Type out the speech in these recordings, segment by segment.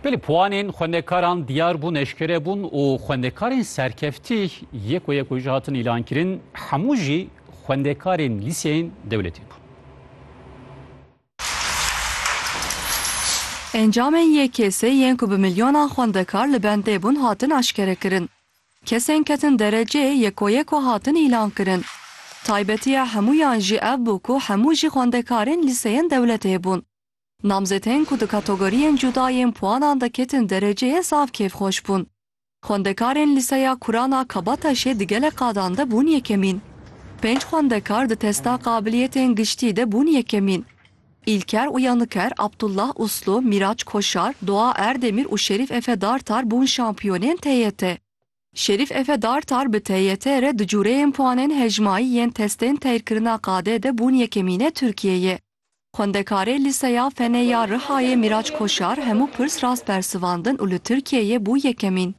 Belê puanên xwendekaran diyar bûn, eşkere bûn û xwendekarên serkeftî yek û yek û jî hatin îlankirin, hemû jî xwendekarên lîseyên dewletî bûn. Encamên YKS yên ku bi milyonan xwendekar li bendê bûn hatin eşkerekirin. Kesên ketin derecê yek û yek û hatin îlankirin. Taybetiya hemûyan jî ev bû ku hemû jî xwendekarên lîseyên dewletê bûn. Namzetên ku di kategoriyên cuda yên puanan de ketin dereceyê zaf kêfxweş bûn. Xwendekarên Lîseya Kuran a Kabataşê di gelek qadan de bûn yekemîn. Pênc xwendekar di testa qabiliyetên giştî de bûn yekemîn. Îlker Uyaniker, Abdullah Uslu, Miraç Koşar, Doğa Erdemir û Şerîf Efe Dartar bûn şampiyonên TYT. Şerîf Efe Dartar bi TYT re di cureyên puanên hejmayî yên testên teyrkirina qadê de bûn yekemînê Tirkiyeyê. Xwendekarê Lîseya Fenê ya Rihayê Mîraç Koşar hemû pirs rast bersivandin û li Tirkiyeyê bû yekemîn.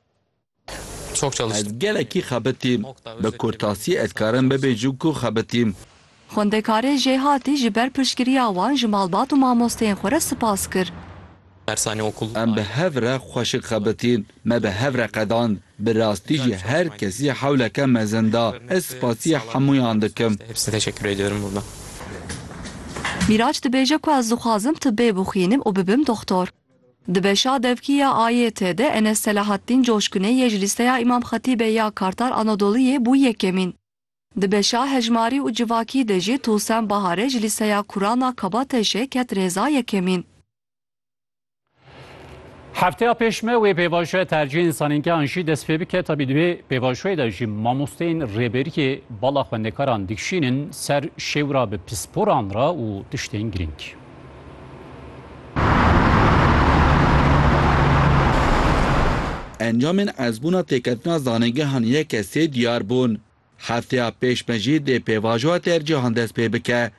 Ez gelekî xebitîm. Bi kurtasî ez karim bibêjim ku xebitîm. Xwendekarê Jêhatî ji ber piştgiriya wan ji malbat û mamosteyên xwe re spas kir. Dersane okul aye. Em bi hev re xweşik xebitîn, me bi hev re qedand. Bi rastî jî her kesî hewleke mezin da. Ez spasî hemûyan dikim. Mîraç dibêje ku ez dixwazim tibê bixwînim û bibim doxtor. Di beşa devkî ya AYT de Enes Selahattîn Coşkunê yê ji lîsteya Îmam Xetîbê ya Kartal Anadoluyê bû yekemîn. Di beşa hejmarî û civakî de jî Tosen Bahare ji Lîseya Kuran a Kabateşê ket rêza yekemîn. Hefteya pêş me wê pêvajoya tercîhên zanîngehan jî dest pê bike. Tabî di vê pêvajoyê de jî mamosteyên rêberiyê bala xwendekaran dikişînin ser şêwra bi pisporan re û tiştên girîng. Encamên ezbûna têketina zanîngehan yek e sê diyar bûn. Hefteya pêş me jî dê pêvajoya tercîhan dest pê bike.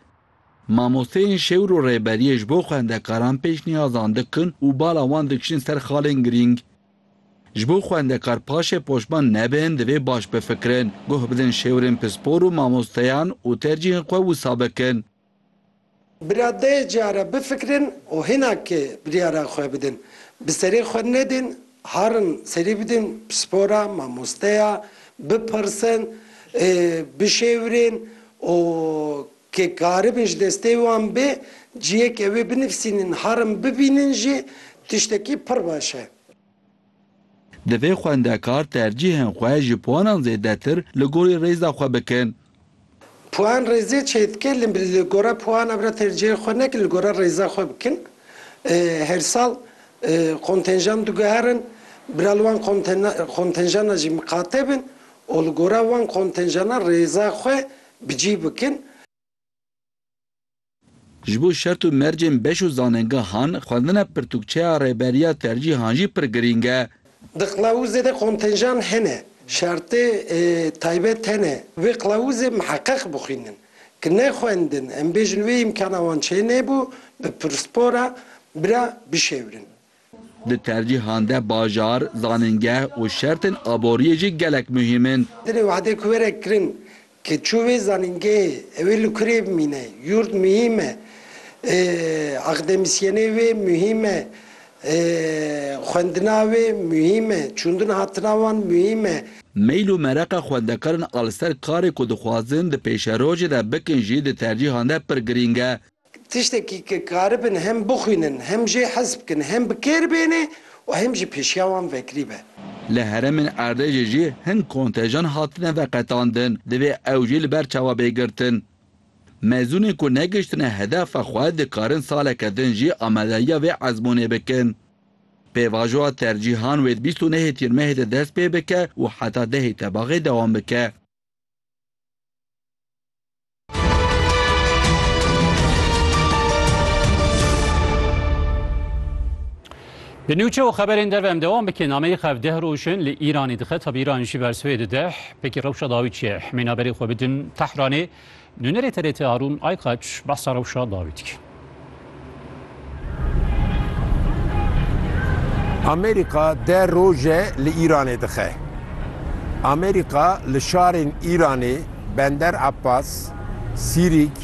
Mamosteyên şêwir û rêberiyê ji bo xwendekaran pêşniyazan dikin û bala wan dikişin ser xalên girîng. Ji bo xwendekar paşê poşman nebin divê baş bifikirin, guh bidin şêwirên pispor û mamosteyan û tercîhên xwe wisa bikin. Bi radeyê cîyare bifikirin û hînakê biryara xwe bidin. Bi serê xwe nedin, harin serî bidin pispora, mamosteya, bipirsin, bişêwirên û ke karibin ji destê wan bê cîyeke wê binivîsînin harin bibînin jî tiştekî pir baş e. Divê xwendekar tercîhên xwe ji puanan zêdetir li gorî rêza xwe bikin. Puan rêzê çêdike li li gora puana bira tercîhê xwe nekin li gora rêza xwe bikin. Her sal kontenjan diguherin, bira li wan kontenjana jî miqate bin û li gora wan kontenjana rêza xwe bi cî bikin. Ji bo şert û mercên beş û zanengehan, xwendina pirtûkçeya rêberiya tercîhan jî pir girîng e. Di qilawûzê de kontenjan hene, şertê taybet hene, vê qilawûzê miheqeq bixwînin. Ki nexwendin, em bêjin wê îmkana wan çênebû, bi pirsipora bira bişêwrin. Di tercîhan de bajar, zanîngeh û şertên aboriyê jî gelek muhîm in. Dilê wehdê ku were kirin ke çû wê zanîngehê ew ê li kurê bimîne. Yûrd muhîm e. Akademîsyenê wê muhîm e. Xwendina wê muhîm e. Çûndin hatina wan muhîm e. Meyl û mereqa xwendekaran a li ser karê ku dixwazin di pêşerojê de bikin jî di tercîhan de pir girîng e. Tiştekî ke karibin hem bixwînin, hem jê hez bikin, hem bi kêr bêne û hem jî pêşiya wan vekirî be. Li herêmên erdêjê jî hin kontejan hatine veqetandin, divê ew jî li ber çawa bê girtin. Mezûnên ku negihiştine hedefa xwe dikarin saleke din jî amadeya vê ezmûnê bikin. Pêvajoya tercîhan wê di bîst û nehê Tîr Mehê de dest pê bike û heta dehê Tebaxê dewam bike. Di nûçe û xeberên dev em dewam bikin nameyê xev deh roj in li Îranê dixe tabi Îran jî ber swê dideh pekî rewşa dawî çi ye hemêna berê xwe bidin Tehranê nûnerê TRT Harûn Aykaç behsa rewşa dawî dikin. Amerîka deh roje li Îranê dixe. Amerîka li şarên Îranê Bender Abbas, Sîrîk,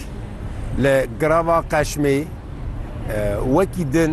li Girava Qeşmê wekî din,